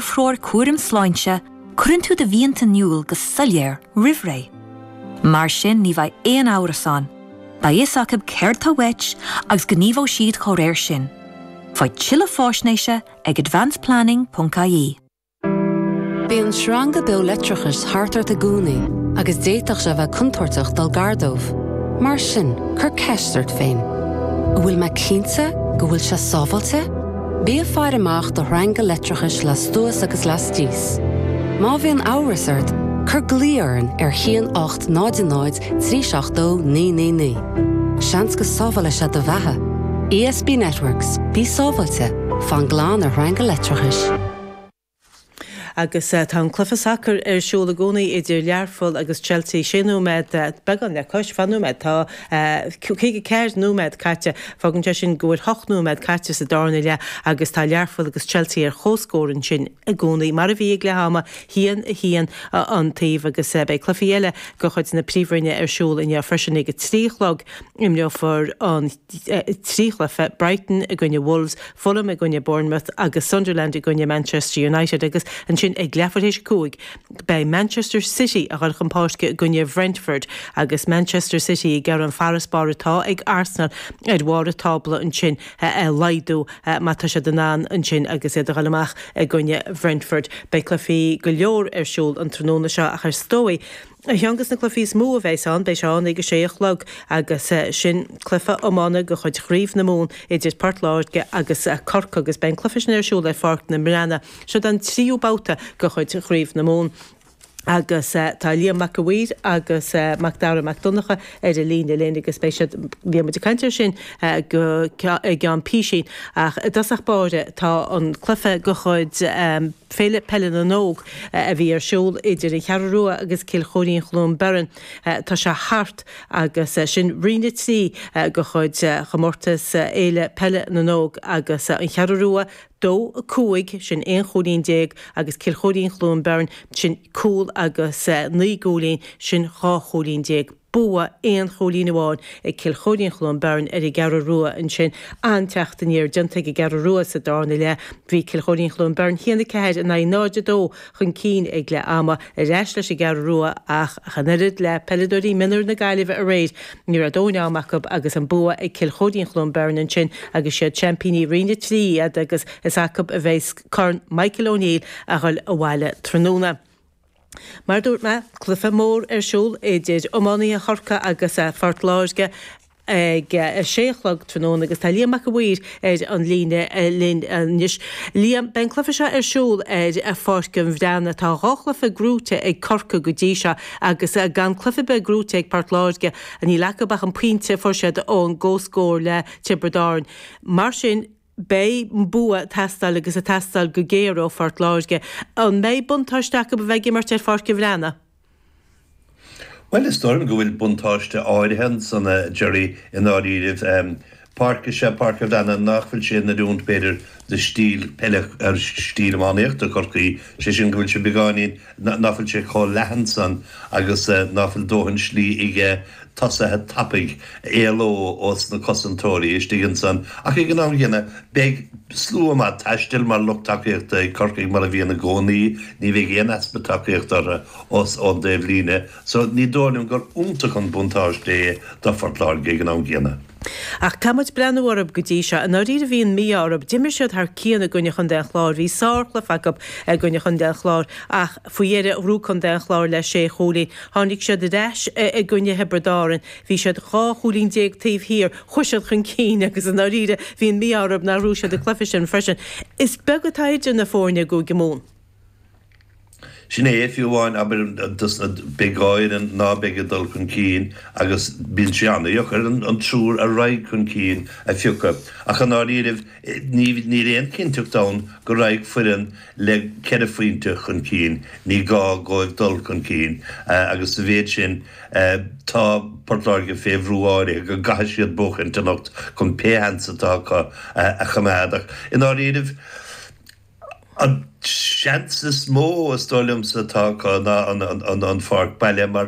threoir cúraim sláinte, cuireann tú do mhianta in iúl go soiléir roimh ré. Mar sin ní bheidh aon amhras ann, beidh fhios acu céard tá uait agus gníomhóidh siad dá réir sin. Faigh tuilleadh fáisnéise ag advanceplanning.ie. Bíonn sreanga beo leictreachais thart ort i gcónaí agus d'fhéadfadh sé a bheith contúirteach dul gar dóibh. Mar sin, cuir ceist ort féin, An bhfuil mé cinnte go bhfuil sé sábháilte? Bí ag faire amach do shreanga leictreachais lastuas agus lastíos. Má bhíonn amhras ort, cur glao orainn ar 1800 372 999. Seans go sábhálfaidh sé do bheatha. ESB Networks, bí sábháilte, fan glan ar shreanga leictreachais. Agus tá an cluiche sacair ar siúl i gcónaí idir Learpholl agus Chelsea. Sé nóiméad, beagán le cois ocht nóiméad, tá caoga ceathair nóiméad caite. Fágann sé sin go bhfuil hocht nóiméad caite sa darna leath agus tá Learpholl agus Chelsea ar chomhscór ansin i gcónaí, mar a bhí ag leath ama, haon a haon an taobh agus beidh cluichí eile de chuid na Príomhroinne ar siúl inniu freisin. Ag a trí a chlog imreofar na. trí chluiche, Brighton i gcoinne Wolves, Fulham i gcoinne Bournemouth agus Sunderland i gcoinne Manchester United, agus ansin ag leath tar éis a cúig beidh Manchester City a ghoil chun páirce i gcoinne Brentford agus Manchester City ag iarraidh an farasbarr atá ag Arsenal ar bharr an tábla ansin a laghdú má tá siad in ann ansin agus iad a ghoil amach i gcoinne Brentford. Beidh cluichí go leor ar siúl an tráthnóna seo ach is dóigh Aonghus na cluichí is mó a bheas ann, beidh sé ann ag a sé a chlog agus sin cluiche iomána de chuid Chraobh na Mumhan idir Port Láirge agus Corcaigh agus beidh an cluiche sin ar siúl ar Pháirc an Bhreathnaigh. Seo an tríú babhta de chuid Chraobh na Mumhan agus tá Liam Mac a' Mhaoir agus Mac Dara Mac Donncha ar an líne linn agus beidh siad, beidh muid ag caint air sin i gceann písín ach i dtosach báire tá an cluiche de chuid. Féile Peile na nÓg a bhí ar siúl idir an Cheathrú Rua agus Cill Choirín-Chluain Bheirn. Tá sé thart agus sin Roinn 3 de chuid Chomórtas Fhéile Peile na nÓg agus an Cheathrú Rua, dó, cúig, sin aon chúilín déag, agus Cill Choirín-Chluain Bheirn, sin cúl agus naoi gcúilín, sin dhá chúilín déag. bua aon chúilín amháin ag Cill Choirín-Chluain Bheirn ar an gCeathrú Rua ansin an-teacht aniar déanta ag an gCeathrú Rua sa darna leath. Bhí Cill Choirín-Chluain Bheirn 1-4 in aghaidh 0-2 chun cinn ag leath ama, ar ais leis an gCeathrú Rua ach, ach an oiread le peileadóirí mionúir na Gaillimhe aréir, ní raibh dóthain ama acu agus an bua ag Cill Choirín-Chluain Bheirn ansin agus is iad seaimpíní Roinn 3 iad agus is acu a bheidh Corn Michael O'Neill a ghoil abhaile tráthnóna. Mar a dúirt mé, cluiche mór ar siúl idir iománaithe Chorcaí agus Phort Láirge ag a sé a chlog tráthnóna agus tá Liam Mac an Mhaoir ar an líne linn anois. Liam, beidh an cluiche seo ar siúl ar Pháirc an Bhreathnaigh. Tá dhá chluiche gnóite ag Corcaigh go dtí seo agus gan cluiche ar bith gnóite ag Port Láirge. Níl acu ach an pointe a fuair siad ón gcomhscór le Tiobraid Árann. Mar sin. beidh bua ag teastáil agus ag teastáil go géar ó Phort Láirge. An mbeidh buntáiste acu a bheith ag imirt ar Pháirc an Bhreathnaigh? Bhuel, is dóigh liom go bhfuil buntáiste áirithe ansan, a Ghearóid, i ndáiríribh. Páirc is ea Páirc an Bhreathnaigh nach bhfuil sé in oiriúint, b'fhéidir, do stíl peile, stíl iománaíochta Chorcaí, sé sin go bhfuil sé beagáinín nach bhfuil sé chomh leathan san agus nach bhfuil dóthain slí aige tosaithe tapaidh a éaló ós na cosantóirí istigh ansan ach ag an am gcéanna beidh slua maith taistil mar lucht tacaíochta ag Corcaigh mar a bhíonn i gcónaí, ní bheidh aon easpa tacaíochta orthu ós ón dtaobh líne so ní dóigh liom gur iontach an buntáiste é do Phort Láirge ag an am gcéanna. Ach caithfidh muid breathnú orthu go dtí seo. I ndáiríre bhí an mí-ádh orthu. D'imir siad thar cionn i gcoinne Chontae an Chláir. Bhí sárchluiche acu i gcoinne Chontae an Chláir ach faoi dheireadh ghnóthaigh Contae an Chláir le sé chúilín. Tháinig siad ar ais i gcoinne Thiobraid Árann. Bhí siad dhá chúilín déag taobh thiar. Chuaigh siad chun cinn agus i ndáiríre bhí an mí-ádh orthu nár ghnóthaigh siad an cluiche sin freisin. Is beag atá idir na foirne i gCúige Mumhan. Sin é, fiú amháin, abair, dos na beidh dhá fhoireann ná beidh ag dul chun cinn agus bíonn sé an-dheacair an triúr a raghaidh chun cinn a phiocadh ach i ndáiríribh ní níl aon chinnteacht ann go raghaidh foireann le ceithre phointe chun cinn, ní gá dhóibh dul chun cinn agus sa mhéid sin tá Port Láirge fé bhrú áirithe go gcaithfidh siad buachaint anocht chun pé sheans atá acu a choimeád ach i ndáiríribh, An seans is mó, is dóigh liomsa, atá acu ná an pháirc baile mar